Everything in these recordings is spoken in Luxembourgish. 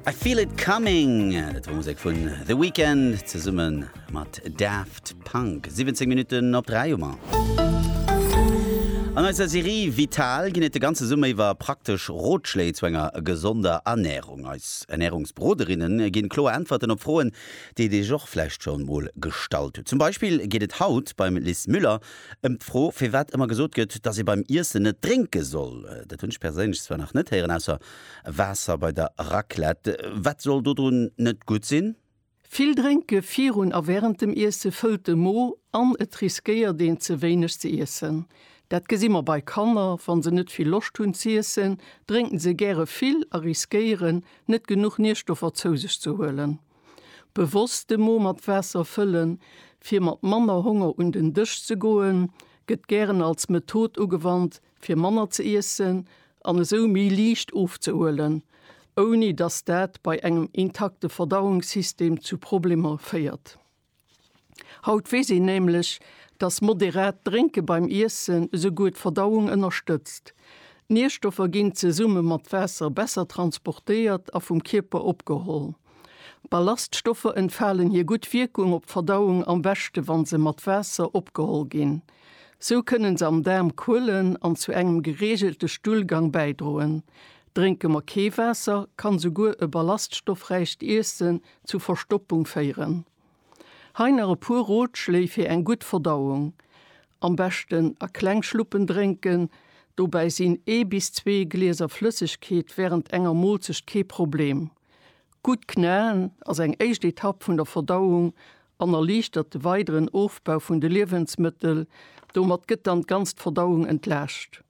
I feel it coming Et war Musek vun The Weekend zesummen mat Daft Punk 17 Minuten op 3 Hummer. An eiser Serie Vital ginn et de ganze Summer iwwer praktesch Rotschléi zu enger gesonder Ernärung. Eis Ernärungsberoderinne ginn kloer Äntwerten op Froen, déi dir iech och vläicht schonn mol gestallt hutt. Zum Beispill geet et haut beim Lis Müller Ëm d'Fro, firwat ëmmer gesot gëtt, datt ee beim Iessen net drénke soll, dat hunn ech perséinlech zwar nach net héieren, ausser Waasser bei der Raclette. Wat soll dodrun net gutt sinn? Vill Drénke virun a wärend dem Iesse fëllt de Mo an et riskéiert een ze wéineg ze iessen. Dat gesi mer bei Kanner, wa se net vill Loscht hunn z'iessen, drénken se gäre vill a riskéieren, net genuch Nierstoffer zou sech ze huelen. Bewosst de Mo mat Waasser fëllen, fir mat manner Honger un den Dësch ze goen, gëtt gären als Method ugewannt, fir manner ze iessen an esou méi liicht ofzehuelen, ouni dass dat bei engem intakte Verdauungssystem zu Problemer féiert. Haut weess een nämlech, dass moderat Drénke beim Iessen esouguer d'Verdauung ënnerstëtzt. D'Nierstoffer ginn zesumme mat Waasser besser transportéiert a vum Kierper opgeholl. Ballaststoffer entfalen hir gutt Wierkung op d'Verdauung am beschte wa se mat Waasser opgeholl ginn. Sou kënne se am Daarm kuelen an zu engem gereegelte Stullgang bäidroen. Drénke mer kee Waasser, kann esouguer e ballaststoffräicht Iessen Zu Verstoppung féieren. Hei nach e puer Rotschléi fir eng gutt Verdauung, Am beschten a kleng Schluppen drénken, dobäi sinn ee bis zwee Glieser Flëssegkeet wärend enger Moolzecht kee Problem. Gutt knaen ass eng éischt Etapp vun der Verdauung an erliichtert de weideren Ofbau vun de Liewensmëttel, domat gëtt dann d'ganzt Verdauung entlaascht.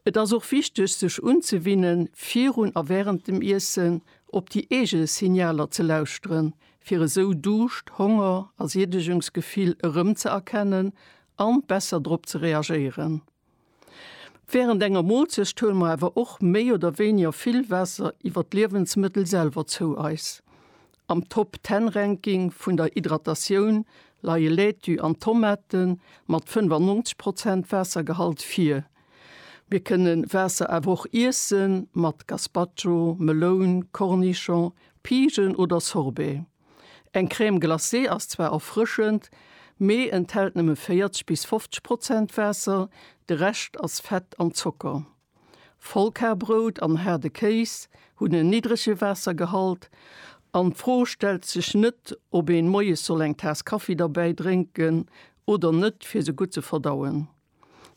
Et ass och wichteg sech unzewinnen, virun a während dem Iessen op déi eege Signaler ze lauschteren, fir esou Duuscht, Honger a Siedegungsgefill erëm ze erkennen an besser drop ze reagéieren. Während enger Moolzecht huele mer awer och méi oder wéiniger vill Waasser iwwer d'Liewensmëttel selwer zou eis. Am Top Ten Ranking vun der Hydratatioun leie Laitue an Tomate mat 95 Prozent Waassergehalt vir. Mir kënne Waasser awer och iesse mat Gazpacho, Meloun, Cornichon, Pigen oder Sorbet. Eng Crème glacée ass zwar erfrëschend, mee enthält nëmme 40 bis 50 Prozent Waasser, de Rescht ass Fett an Zocker. Vollkarbrout an haarde Kéis hunn en niddrege Waassergehalt an d'Fro stellt sech net, ob een moies soll eng Taass Kaffi derbäi drénken oder net, fir se gutt ze verdauen.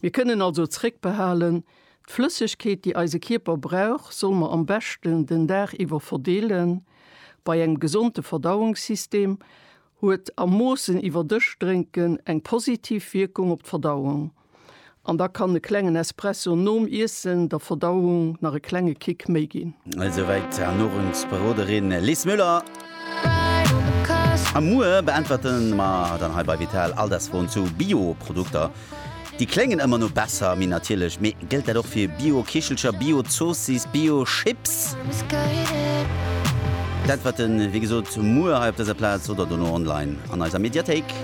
Mir kënnen also zréckbehalen, D'Flëssegkeet, déi eise Kierper brauch, soll mer am beschten den Dag iwwer verdeelen. Bei engem gesonde Verdauungssystem huet am Moossen iwwerdëscht drénken eng positiv Wierkung op d'Verdauung. an da kann e klengen Espresso nom Iessen der Verdauung nach e klenge Kick méi ginn. Esouwäit d'Ernurungsberoderin Lis Müller. A muer beäntwerte mer dann hei bei Vital all des Froen zu Bio-Produkter. Déi kléngen ëmmer no besser, méi natierlech. Mee gëllt dat och fir Bio-Kichelcher, Bio-Zoossiss, Bio-Chips? D'Äntwerte wéi gesot muer hei op dëser Plaz oder dono online an eiser Mediathéik.